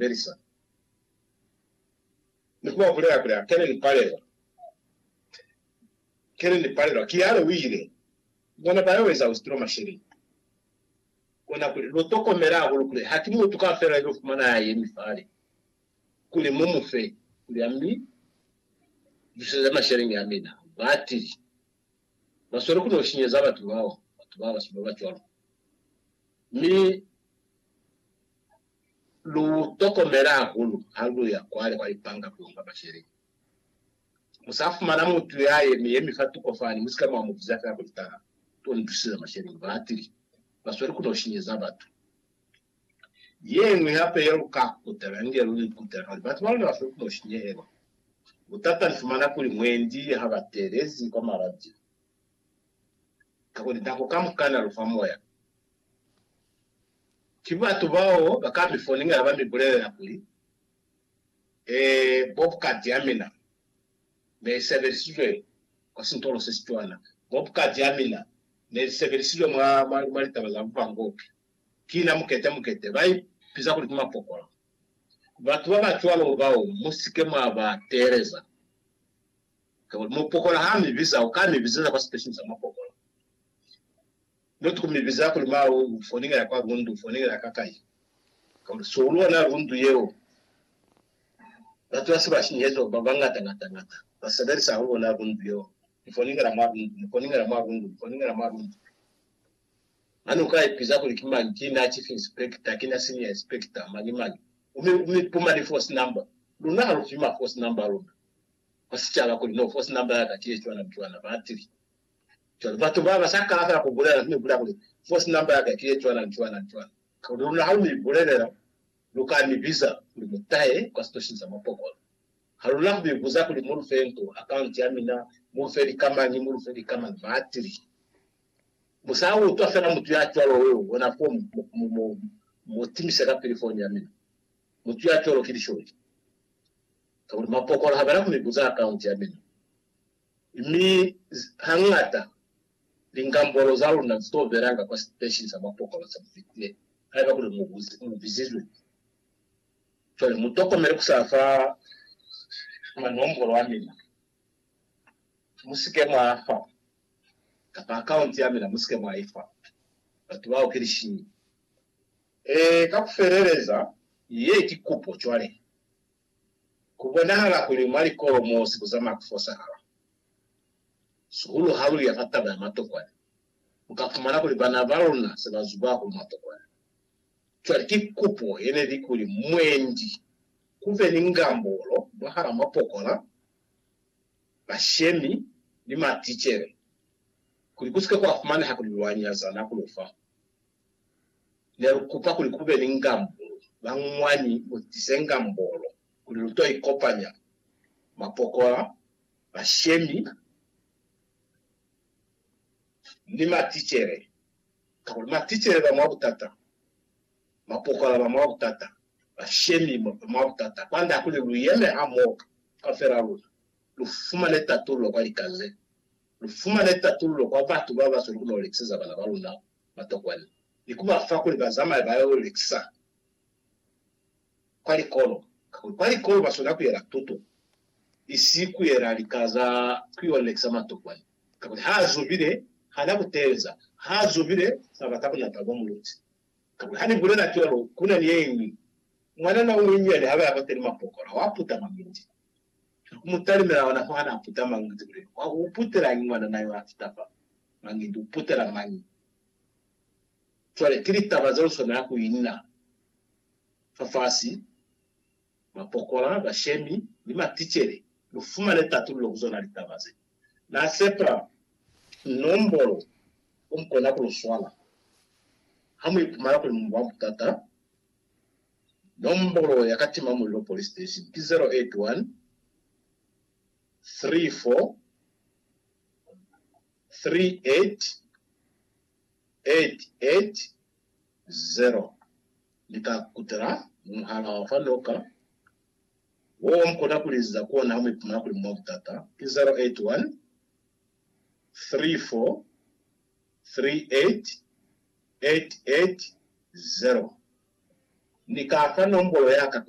Melissa. Ni ku ba bulela kuli, Akene ni palelwa. Kene ni palelwa. Kiale u ile. Bona ba yo eza Austrlo masheleni. Kona kuli, Lu tokomele hahulu kuli ha ki mutu kaufela ya yo fumana ya yemi fale, kuli mu mu fe, kuli a mi buseze masheleni a mina. Ba tili. Ba sweli ku no shinyeza batu bao, batu ba basweu ba ba cwalo. Mi. Lu tokomela hahulu ha lu ya kwale kwa lipanga ku yo nga masheleni. Mu sa fumana mutu ya yemi-yemi fa tuko fani, mu si ka mwa mu biza fela kuli, Tala, to ni tusizela masheleni. Ba atile, Ba sweli ku no shinyeza batu. Ye ñwi hape ye lu ka kutela, ni ye lu ni kutela kuli, Batu ba luna ba sweli ku no shinyehelwa. Butata ni fumana kuli mwendi ha ba teelezi kwa maradio, kakuli nako kamukana lu fa moya. Ki batu bao ba ka mi foninga ha ba mi bulelela kuli, Ee, Bobcat ya mina ne i sebelisizwe kwa sintolo se si cwana. Bobcat ya mina ne li sebelisizwe mwa, mwa, mwa litaba za bupangopi. Ki na mukete, mukete. Ba i biza kuli ki mapokola. Batu ba ba cwalo bao mu si ke mwa ba teeleza. Kakuli mupokola ha mi biza, u ka mi bizeza kwa siteshini sa mapokola. Mutu ku mi biza kuli, Mawe, u foningela kwa lundu, u foningela ka kai? Ka kuli, Si u lona lundu yeo. Batu ba si ba sinyeheziwa ba bañata ngata ngata, ba sebelisa hahulu lona lundu yeo. Ni foningela mwa lundu, ni foningela mwa lundu, ni foningela mwa lundu. Mane u ka ipiza kuli, Ki mañi? Ki na chief inspector? Ki na senior inspector? Mañi mañi? U mi, u mi puma ni force number. Luna ha lu fi ma force number a luna kwa sicaba kuli, No, force number ya ka ki ye cwana ni cwana. Ba tili, Cwale batu baba sa kala fela ku bulela, mi bulela kuli, Force number yaka ki ye cwana ni cwana ni cwana. Kuli luna ha lu mi bulelela, lu ka mi biza kuli mu tahe kwa sitoshini sa mwa pokolo. Ha luna ku mi buza kuli mu lu fe nto, account ya mina, mu lu fe lika mañi, mu lu fe lika mañi, maatili. Mu sa utwa fela mutu ya cwalo yo bona fo, mu, mu, mu timise kapili foni ya mina. Mutu ya cwalo ki lisholi. Kakuli mwa pokolo ha ba na ku mi buza account ya mina. Mi hañata, linkambolo za luna zi to belanga kwa siteshini sa mapokolo se mu fitile, haiba kuli mu bizizwe. Cwale mu tokomele ku sa fa manombolo a mina. Mu si ke mwa a fa, kapa akaunti ya mina mu si ke mwa i fa batu bao ki lishinyi. Ee, ka ku feleleza. Ye ki kupo cwale. Ku bonahala kuli mwa likolo mo si ku zamaya ku fosahala, sihulu ha lu ya fa taba ya matokwane, lu ka fumana kuli bana ba luna se ba zuba hahulu matokwane. Cwale ki kupo ye ne li kuli mwendi ku be ni ngambolo mwahal'a mapokola, bashemi, ni maticele, kuli ku si ke kwa fumaneha kuli lwa nyazana ku lu fa ne lu kupa kuli ku be ni ngambulu ba mwañi mu tise ngambolo kuli lu to ikopanya mapokola, bashemi, ni maticele. Kakuli maticele ba mwa butata, mapokola ba mwa butata, bashemi ba mwa butata. Kwand'a kuli lu yeme hamoho kaufela luna, lu fumane tatullo kwa lika ze, lu fumane tatullo kwa batu ba ba sweli ku no lekiseza bana ba luna matokwana ni ku ba fa kuli ba zamaye ba yo lekisa kwa likolo, kakuli kwa likolo ba swanela ku yela tuto, isi ku yela lika za ku yo lekisa matokwana, kakuli ha zobile ha na ku teeleza, ha zobile fa bata bunata bwa muluti. Kakuli ha ni bulela cwalo, ku na ni ye ñwi mwanana o munyinyani ha ba ya kwateni mwa pokola, wa puta mabindi ni ku mu talimela ona fo ha na puta mabindi kuli, Wa u putelañi mwanana yo a fita fa? Mañi lu putela mañi? Cwale ki litaba ze lu swanela ku ina fafasi, mapokola, bashemi, ni maticele. Lu fumane tatululo ku zona litaba ze. Na sepa nombolo ku mu kona ku lu swala. Ha mu ipumana kuli mu mwa butata, nombolo ya Katima Mulilo Police Station ki 081 34 3880 Ni ka kutela muhala wa fa noka wo mu kona ku liziza ku ona ha mu ipumana kuli mu mwa butata, ki 0813438880. Ni ka fa nombolo ya ka kuli.